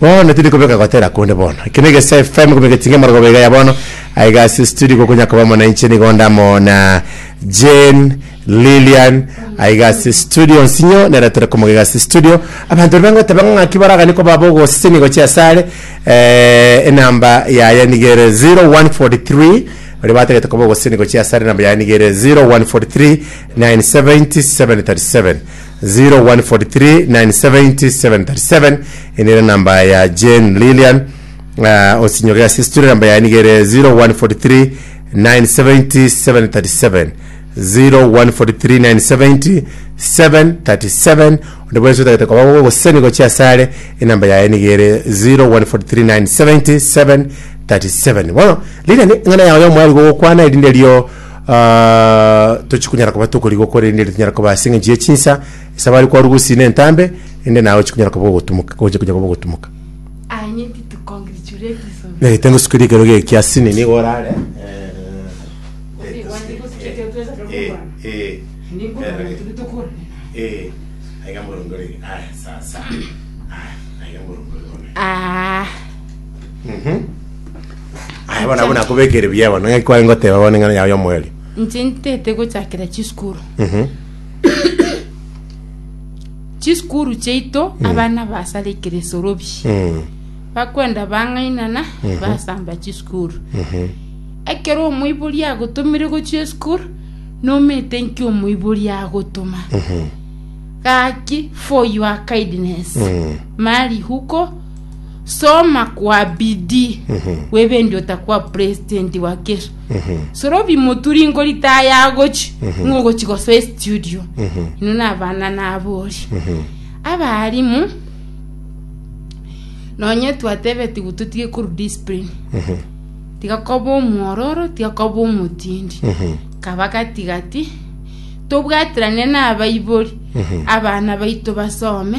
Bono tindi kobeka gotera konde bono. Eke ne Gesa FM gokobeka etinga emorogoba iga ya bono. Aye iga ase studio igo okonya koba amo nainche nigo onde amo na Jane Lilian aye iga ase studio nsinyo nere tore komoga iga ase studio abanto bari bangoteba ng'a ng'aki baragani koba bogosesenia gochia ase are eh, enamba yaye nigo ere 0143 bari batagete koba ogosesenia gochia ase are enamba yaye nigo ere 0143 970 737 014397037 ende ere namba ya Jane Lilian uh, osinyogera sisture namba yaye niga ere 014397037 014397037 onde bwensi otagete koba gogo goseni gochia asare enamba yaye niga ere 014397037 bono Lilian ng'ana yago yomwari gogokwana erinde rio Ah, tochi kunyara koba tokorigwa korende ere tinyara koba ase eng'encho ye chinsa ase abare kwarwa gosina entambe ende naye ochi kunyara koba ogotumuka ochi kunyara koba ogotumuka I need to congratulate this of nagete ngosukerie ekero geke kia sini nigo orare Ah. Aya bono abwo nakobekire buya bono, ng'aki kware ngoteba bono eng'ana yao y'omoerio? Inche ntete gochakera chisukuru Mhm. chisukuru chiaito abana basara ekeresorobi Mm. bakwenda bang'ainana basamba chisukuru Mhm. ekero omoibori agotomire gochia esukuru nomete nki omoibori agotoma Mhm. gaki for your kindness Mm. mari huko soma kwa bidii webende otakwa president wa kesho sorobi moturi ngori taye agochi ng'a ogochi gosoa estudio ino nabana nabori abarimu nonye twatebetiwe totige koru discipline tiga koba omwororo tiga koba omotindi kaba gatigati tobwaterane nabaibori abana baito basome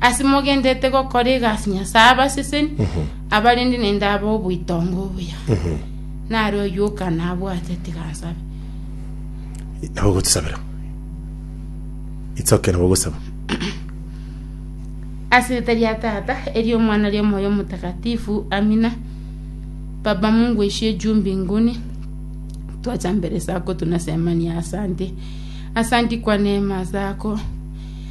Ase mogenderete gokora egasi Nyasae abaseseni, abarende naende abe oboitongo obuya. Nare oyoka nabwate tiga ansabe. Nabo ogotusabera. Itsoke nabo ogosaba. Ase erieta ria Tata, eria Omwana, ria Omoyo Omotakatifu, amina. Baba Mungu oishie juu mbinguni, twacha mbere zako tunasemania asante. Asanti kwa neema zako.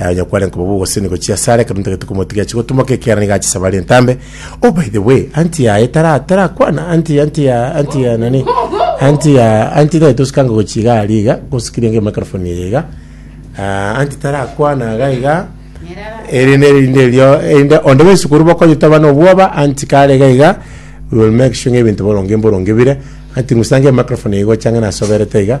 Eh, onye kware nkoba bogoseni gochia ase are, ekero ntagete komotiga ache gotumoka ekiagera nigo achesaba are entambe. Oh, by the way, anti yaye tara tarakwana, anti anti ya anti ya nani? Anti ya anti naye tosikanga gochia iga ari iga, gosikiria nge microphone eye iga. Ah, anti tarakwana iga iga. Erinde erinde erio, erinde onde baisu korwa bakonye taba nobwoba, anti kare iga iga. We will make sure ng'ebinto boronge mboronge bire. Anti ng'usange microphone eye gocha ng'a nasoberete iga.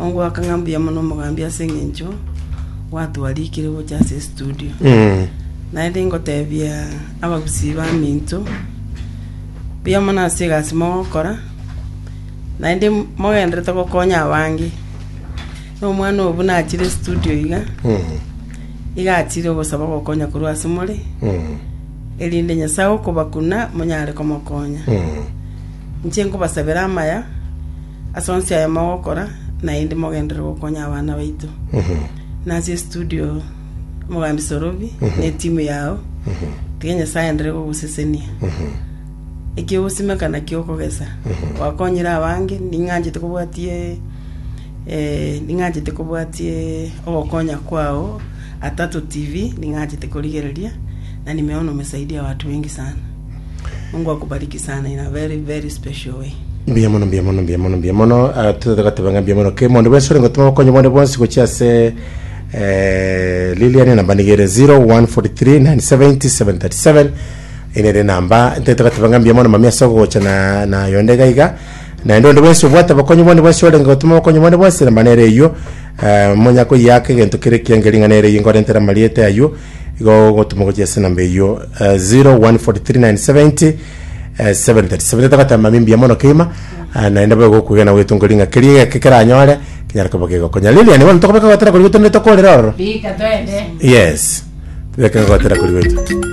Ongoaka ng'a mbuya mono omogambi ase engencho gwatwarikire gocha ase estudio. Naende ingotebia abagusii baminto, mbuya mono ase egasi mogokora, naende m- mogenderete gokonya abange. Na omwana oyo buna achire estudio iga, iga achire ogosaba ogokonya korwa ase more, erinde Nyasae okobakuna monyare komokonya. Inche nkobasabera amaya, Ase onsi aya mogokora, naende mogenderere gokonya abana baito. Na ase estudio, Omogambi Sorobi na etimu yao, tiga Nyasae aenderere kogosesenia. Ekio ogosimeka nakio okogesa. Gwakonyire abange, ning'anchete kobwatie eh, ning'anchete kobwatie ogokonya kwao Atato TV, ning'anchete korigereria, na nimeona umesaidia watu wengi sana. Mungu akubariki sana in a very very special way. mbuya mono mbuya mono mbuya mono mbuya mono Ah, tutete goteba ng'a mbuya mono ke mondo bwensi ore gotuma obokonyi bwane bwonsi gochia ase eh, liliani namba niga ere 014397037 ene ere namba ntete goteba ng'a mbuya mono mami ase ogogocha na na yonde iga iga naende onde bwensi obwate obokonyi bwane bwensi orenge gotuma obokonyi bwane bwensi namba nere eywo eh, monya koyaka egento kere kiangeri ng'a nere eywo nkorentere amariete aywo igo ogotuma gochia ase enamba eyio eh, 0143970 eh, 737 togatamba mimbuya mono keima eh, naende boyo gokugena gwetunga ring'a keria egeke keranyore kinyara koba gegokonya lilian bono tokobeka gotera kori gwetu nde tokorera ororo Rika twende. yes tobeke gotera kori gwetu